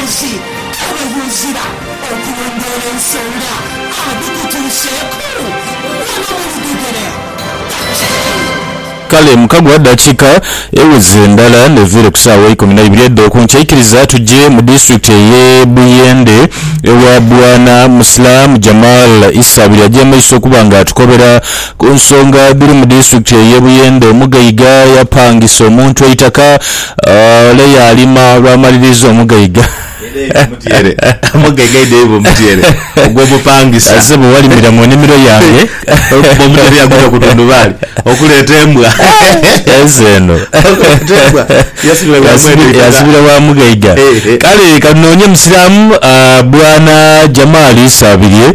Abayozi abaghuzira okulondoola ensonga adhikutuuseeku ghano mu lugegere batyayo. Kale mukagwa dakiika eweze ndala neviire ku saawa eikumi naibiri edhokunkya ikiriza tuje mu disitulikiti eye Buyende ewa Bwana Muslam Jamal Issa Biryagyemaiso okuba nga atukobera Ku nsonga dhiri mu disitulikiti ey'e Buyende, Omugaiga yapangisa omuntu eitaka ole yaalima olwamaliriza Omugaiga azze bwe walimira mu nnimiro yange ensi eno yaasibira wa Mugaiga kale kanoonye Musiraamu Bwana Jamal Isabirye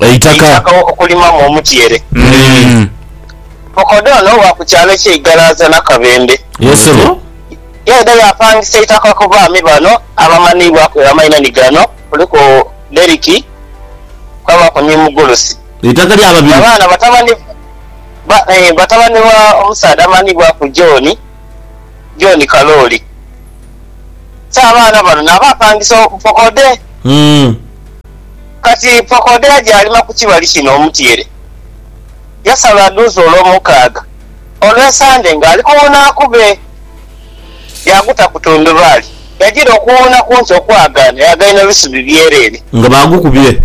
Eitaka. Eitaka okulimamu omutyeere. Eeh. Mukodo ono wa ku kyalo ekye Igalaaza Nakabembe. Yes ssebo. Yaidha yapangisa eitaka ku baami bano abamanhibwaku amainha ni gano, kuliku Derrick kwabaaku ni Mugulusi. Eitaka lya babiri. Abaana batabani ba eeh batabani ba omusaadha amanhibwaku John, John Kalooli. So abaana bano naabapangisa obukokode. Umm. Kati Pokodeya gyalima ku kibali kino omutyeere, yasala adhuuze olwomukaaga olw'esande ng'ali kuwuuna akube. Yaaguta ku tundubaali, yagira okuwuuna kunte okwagaana yaghaina ebisubi byereere. Nga baagukubye?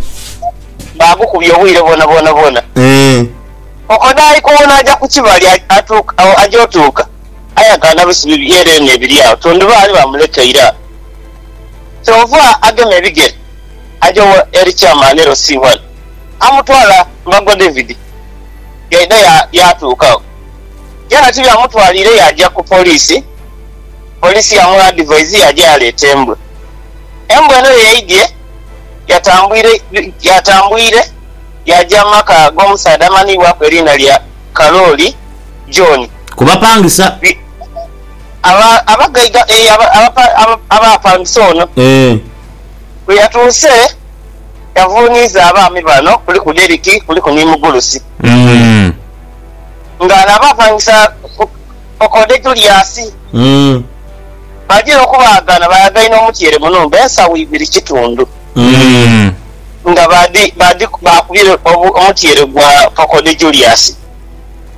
Baagukubye obwire bwonabwona bwona. Eeh. Pokodeya ali kuwuuna aja ku kibali, atuuka agho. Aja otuuka, aye agaana bisubi byereere n'ebiri agho, tundubaali baamulekeire agho. Kyova agema ebigere aja wa Eri Chairman LC1 amutwala mu Bagwa David yaidha yatuuka agho byona tibyamutwaliire yaja ku Police, Police yamu advise yaja yaleeta embwa. Embwa eno yeyaidhye yatambwire yaja mu maka g'omusaadha amanhibwaku eriina lya Kalooli John. Ku bapangisa. Abagaiga abaapangisa ono bwe yatuuse yavuuniiza abaami bano kuliku Derrick kuliku ni Mugulusi nga naabo apangisa Okode Julius bagira okubaagana baagaina omutyeere mu nhumba ensawo ibiri kitundu nga baakubira omutyeere gwa Okode Julius.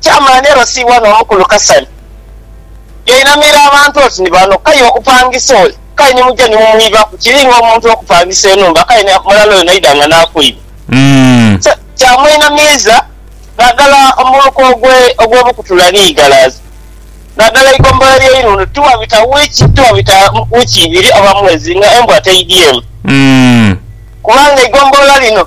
Chairman LC wano omukulu Kasani yainamira abantu oti ni bano kaye okupangisa oli kale ni muja ni mumwibaku kiri nga omuntu okupangisa enhumba kale ni mulala oyo naidha nga nakwiba so kyamweinamiiza nadala omuluka ogwe ogwe Bukutula ni Igalaza nadala eigombolola lye Inundu tiwabita wiki tiwabita wiki ibiri oba mwezi nga embwa teidyemu kubanga eigombolola lino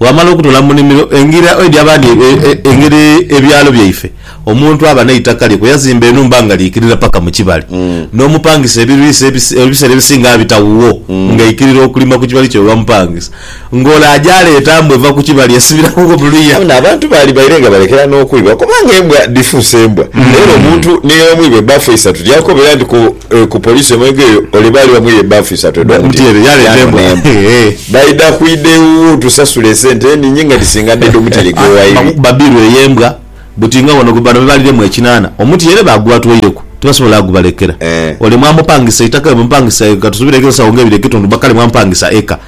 Bwamala okutola mu nimiro engira edyo abandi engeri ebyalo byaife omuntu aba neitaka lye kuyazimba enhumba nga liikirira paka mu kibali n'omupangisa ebiriisa ebiseera ebisinga abita wuwo nga aikirira okulima ku kibali kye webamupangisa ng'ole aja aleeta mbwa eva ku kibali esibira wuwo mu luya. Ono abantu baali baire nga balekera n'okwiba kubanga embwa dhifuuse mbwa era omuntu ni omu ibe baafa eisatu lyakobera nti ku Ku police emaiga eyo ole baali bamuya ebaafu isatu edho mutyere yano n'embwa. Baidha kwidha ewuwo tusasule esente eningi nga dhisinga dh'edho mutyere gwe waidha. Kuba biiru eyo embwa buti nga wano bano bebaaliremu ekinana omutyere baagubatwoireku tibasobola agubalekera. Ole mwamupangisa eitaka bwe mupangisa eka tusubireku ensawo nga ibiri edh'ekitundu kale mwamupangisa eka.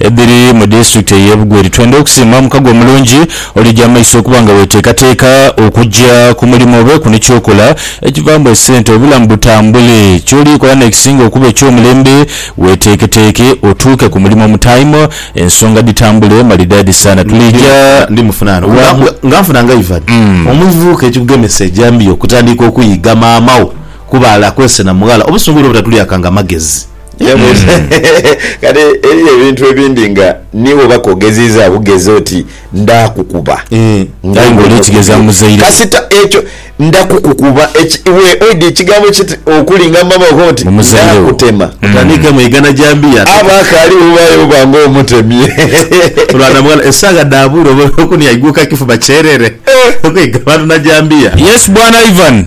edhiri mu disitulikiti ey'e Bugweri. Twendha okusiima omukago omulungi oli gy'amaiso okuba nga weeteekateeka okugya ku mulimo obe ku ni ky'okola ekivaamu esente obulamu butambule. Ky'oliikola n'ekisinga okuba eky'omulembe weeteeketeeke otuuke ku mulimo mu tayimu ensonga dhitambule malidaadi saana. Tuliija wa? Nga nfuna nga Ivan, omuvubuka ekikugemesa ejambiya okutandika okuyiga maama wo kubaala kwesena mughala obusungu buno obutatulyakanga magezi. Kati eriyo ebintu ebindi nga ni bwoba ke ogeziizaa bugezi oti ndaakukuba nga iwe n'okubi, kasita ekyo ndakukukuba iwe oidha ekigambo kiti okulinga mama wo oti ndaakutema. Aba akaali bubaale buba ng'omutemye. Yes bwana Ivan.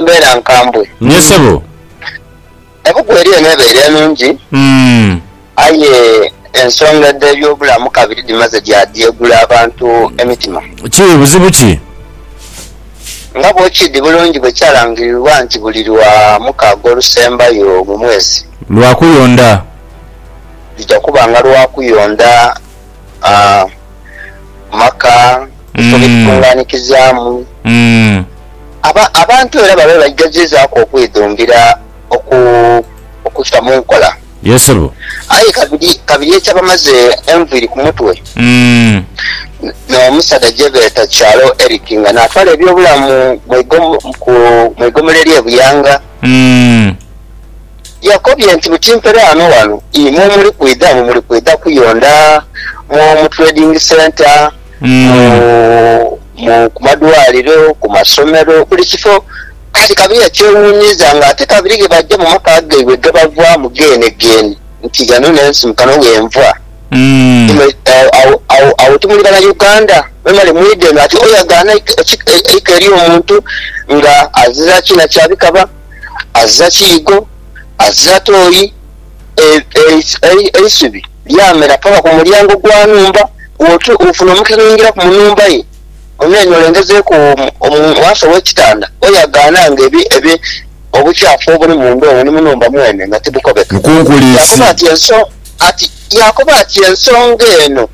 Mbeera nkambwe. Naye sebo. Ebuku eri eno ebeire nungi aye ensonga dhe byobulamu kabiri dhimaze dya dyegula abantu emitima. Ki buzibu ki? Nga bwokidi bulungi bwe kyalangirirwa nti buli lwa mukaaga olusembayo mu mwezi. Lwa kuyonda. Lujja kuba nga lwa kuyonda. amaka, ebifo bye tukunganikizaamu. Abantu era babe baigazizaaku okwidhumbira okuta mu nkola. Aye kabiri eky'abamaze enviiri ku mutwe n'omusaadha gye beeta Kyalo Eric nga n'atwala eby'obulamu mu igomolo ery'e Buyanga. Yakobye nti, Buti mpere ghano ghano imwe omuli kwidha mwe muli kwidha kuyonda mu mu trading centre, mu mu ku madwaliro, ku masomero, buli kifo. Kati kabiri yakyewuunyiiza nga ate kabiri ghe baja mu maka gaibwe ghe bavaamu geenegeene nti ghano n'ensi kano ghe nva. Imwe agho agho agho timuli Banauganda? Mwemale mwidhe eno. Ati oyagaana eika eika ery'omuntu nga azira ki na kyabikaba? azira kiigo, azira toyi, eisubi lyamera paka ku mulyango gwa nhumba, bwofuna omukisa n'oingiraku mu nhumba ye, onoonia olengezeeku mu ghansi gh'ekitanda, oyagaana nga obukyafu obuli munda omwo ni mu nhumba mwene nga tibukobeka. Yakoba ati, Ensonga eno.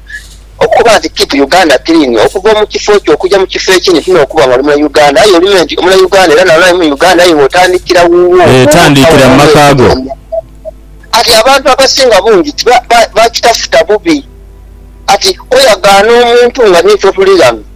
Okukoba nti Keep Uganda Clean, okuva omu kifo kyo okuja mu kifo ekindi ti n'okuba nga oli muna Uganda aye olime nti omuna Uganda era naye ali mu Uganda aye nga otandikira wuwo Tandikira mu maka go. Kati abantu abasinga bungi ti bakitafuta bubi. Kati oyagaana omuntu nga ni ffe otuli ghano.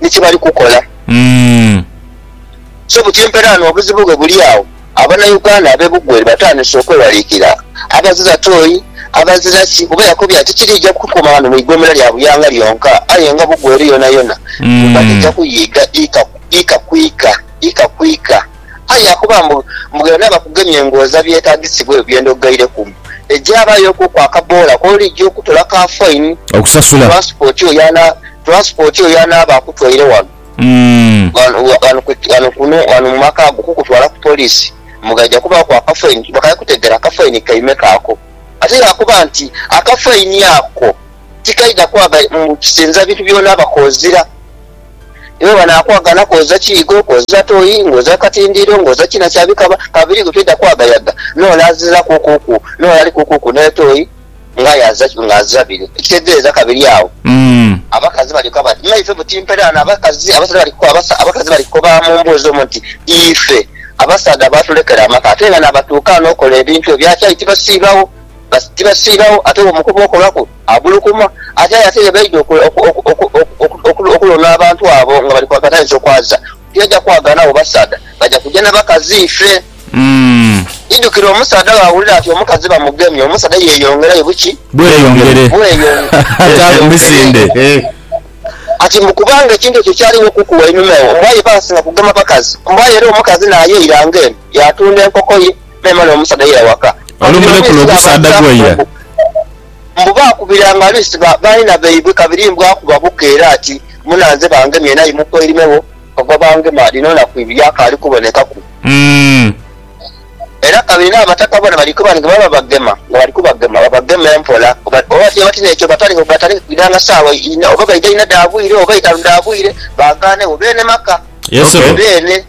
ni kye bali kukola. So buti empeera ghano obuzibu ghe buli agho Abanauganda ab'e Bugweri batandise okwewaliikira abazira toyi, abazira ki kuba yakobye ati tikiriija kukuuma ghano mu ighoomera lya Buyanga lyonka aye nga Bugweri yonayona nga dhija kuyiiga ika ku ika, ika ku ika. Aye yakoba mbu ghona bakugemye ng'oza byetaagisibwa ebyo bye ndoghaireku mbu egya baayokuku akaboola k'oliija okutolaku afaini, tulansipooti oyo. Transport oyo anaaba akutwaire wano wano mu maka go okukutwala ku police mbu ghaidha kubaaku akafaini kuba kali kutegeera kafaini kaimeka ako. Ate yaakoba nti akafaini ako tikaidha kwaga mbu kisinza bintu by'onaaba koozira. Iwe banaakwaga na kwoza kiigo, kwoza toyi, ng'oza katindiiro, ng'oza kina kya bikaba. Kabiriigho toidha kwagayaga n'olazirakuukuuku n'olalikuukuuku n'etoyi ng'aye azira kimu ng'azira biri, ekitegeeza kabiri agho abakazi balyoka bati, Maife buti mperaano abakazi? Abakazi bali kukoba mu mboozi omwo nti, Ife, abasaadha baatulekera amaka ate nga n'abatuukaana okola ebintu ebyo akyali tibasiibagho. Tibasiibagho ate bw'omukoba okolaku abulukuma. Ate aye ate ye baidha okulonda abantu abo nga bali ku akatagiso kwaza. Tiyaja kwagala nabo basaadha, baja kuja na bakazi ife. Idhukire omusaadha bwawulira ati omukazi bamugemye, omusaadha yeyongerayo buki? Bweyongere. Bweyongere. Emisinde. Ati mbu kubanga ekintu ekyo kyali inho kuku wainuma ewo, mbu aye baasinga kugema bakazi. Mbu aye era omukazi naayaira ng'eno, yaatunda enkoko ye, memale omusaadha yaira waka. Olumu lekula ogusaadha gwaira. Mbu baakubiranga Lisi baina baibwe kabiri mbu akuba buka era ati, Munanze bangemye naye mukoirimegho ogwa bangema dhino naku ibiri akaali kubonekaku. Era kabiri n'abataka bona bali kuba nti bwebaba bagema nga bali kubagema babageme mpola oba bwebaba bati n'ekyo batandike kwidhanga saawa inha oba baidha inha dha bwire oba itaanu dha bwire baagaanegho beene maka beene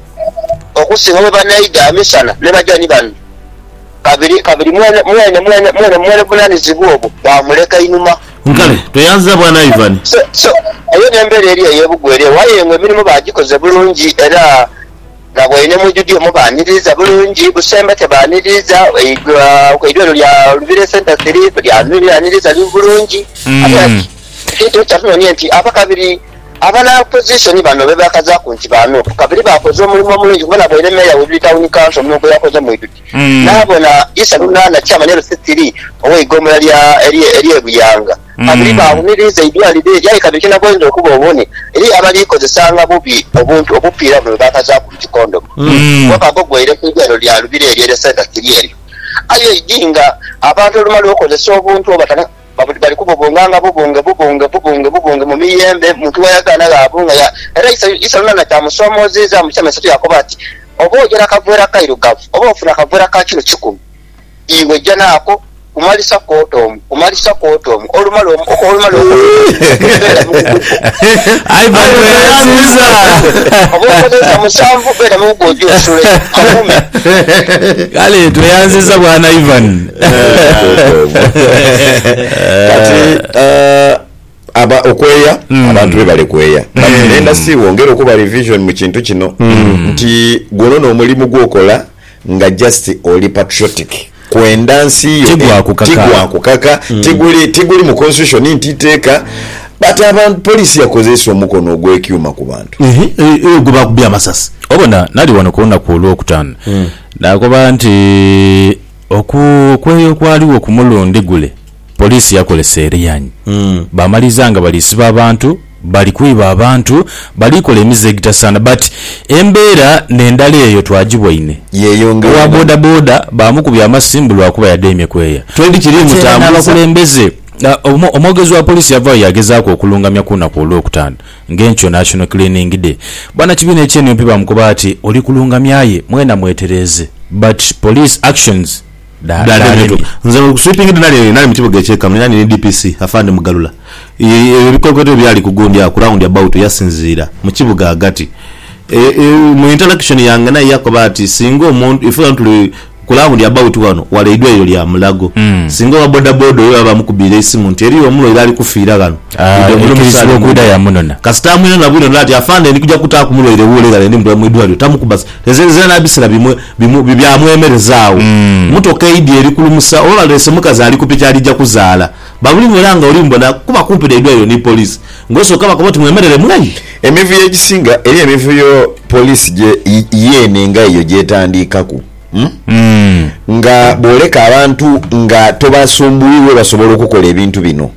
okusinga bwebanaidha misana ni baja ni bano. Kabiri kabiri mwene mwene mwene mwene mwene vunanizibwa obwo baamuleka inhuma. Nkale, tweyanziza Bwana Ivan. So, so, eyo n'embeera eri ey'ebugwa eri ewo, aye nga emirimu baagikoze bulungi era nga bwaine mu Judia omwo baaniriiza bulungi. Busemba te baaniriiza, eidhwa eidhwa lino lya Lubiri Centre Three lyaniriiza bulungi. Ate ekintu kye kyatunoonia nti abakabiri. Abana Opposition bano bebakazaaku nti ba Nup kabiri baakoze omulimu omulungi kuba nabaire Meeya w'Ebiri Tawuni Kanso omulimu gweyakoze mu idhuti naabona Isa Lunana Chairman LCC ii ow'eigombolola lya ery'e Buyanga kabiri baawuniriiza eidwaliro eryo aye kabiri kyenaboinza okuba obone eriyo abaliikozesanga bubi obuntu obupiira buno bwebakazaaku nti kondomu gwokka gwo gweire ku idwaliro lya Lubiri eryo erye Centre Kiri eryo aye idi nga abantu olumala okozesa obuntu oba Babudhi bali kubobonga nga bobonge bobonge bobonge bobonge mu miyembe, muntu ghayagaana ghaabunga ya. Era Isalo naana kyamusoomoozeezaamu ekyama eisatu yaakoba ati, Oba oja na kavera kairugavu, oba ofuna kavera ka kilo kikumi, iwe ja naako kumalisa kwota omu, kumalisa kwota omu, olumala omu, oko olumala oko omusanvu, beera mugugwo oje osule. Magume. Kale tweyanziza bwana Ivan. Kati aba okweya abantu be bale kweya but nenda si wongera okuba revision mu kintu kino nti guno no mulimu gwokola nga just oli patriotic kwenda nsi yo tigwa kukaka tiguli tiguli mu constitution nti iteeka but abantu police yakozesa omukono ogwe kyuma ku bantu eyo gwe bakubye amasasi. Obona nali wano kulunaku olwokutano nakoba nti. Okwo okweeya okwaligho ku mulundi gule, poliisi yakolesa erianyi baamaliza nga bali siba abantu, bali kwiba abantu, bali kola emize egitasaana but embeera n'endala eyo twagibwaine. Owa bodaboda baamukubye amasimu lwakuba yadheemye kweeya ate era n'abakulembeze. Omwogezi wa poliisi yavaayo yaagezaaku okulungamya ku lunaku Olwokutaano. Ng'enkyo National Cleaning Day, bwanakibiina ekye nup bamukoba ati oli kulungamya aye mwena mwetereeze but police actions dhalemye. Nze ku sweeping day nali nali mu kibuga ekye Kamuli nali ni DPC Afande Mugalula. Ebikwekweto ebyali ku gundi agho ku round about yasinziira mu kibuga ghagati. Mu interaction yange naye yakoba ati singa omuntu, ife ghano tuli. Ku laawundi abawuti ghano wala eidwaliro lya Mulago. Singa owa bodaboda oyo baba bamukubiire eisimu nti eriyo omulwaire ali kufiira ghano, idhi omule omusaale mudhe. Kasita amwinona bwino naadha ati, Afande ndi kuja kutaaku mulwaire wuule ghale ndimutwale mu idwaliro, tamukuba zira na bisera bimwe byamwemereza agho. Mmotoka eidhi eri kulumusa oba baleese mukazi ali ku piki ali ja kuzaala. Babuli mwira nga oli mbona kuba kumpi n'eidwaliro ni poliisi ng'osooka bakoba oti mwemerere mwei. Emivuyo egisinga eri emivuyo poliisi gye yeene nga eyo gy'etandiikaku nga bwoleka abantu nga tobasumbuwi webasobola okukola ebintu bino.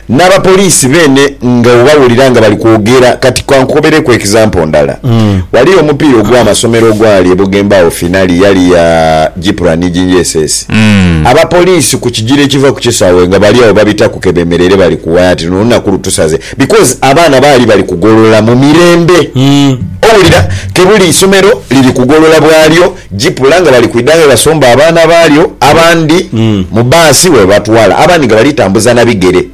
N'abapoliisi beene nga obawulira nga bali kwogera kati ka nkukobereku example ndala. Waliyo omupiira ogw'amasomero ogwali e Bugembe agho finali yali ya Gipra ni JJSS. Abapoliisi ku kigira ekiva ku kisaawe nga bali agho babitaku kebemereire bali kuwaya ati luno olunaku lutusaze because abaana baali bali kugolola mu mirembe owulira kebuli isomero liri kugolola bwalyo jipula nga bali kwidha ghebasomba abaana baalyo abandi mu baasi webatwala abandi nga bali tambuza na bigere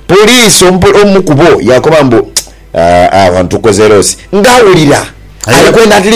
poliisi omu kubo yakoba mbu aah wano tukoze loss nga awulira alikwenda at least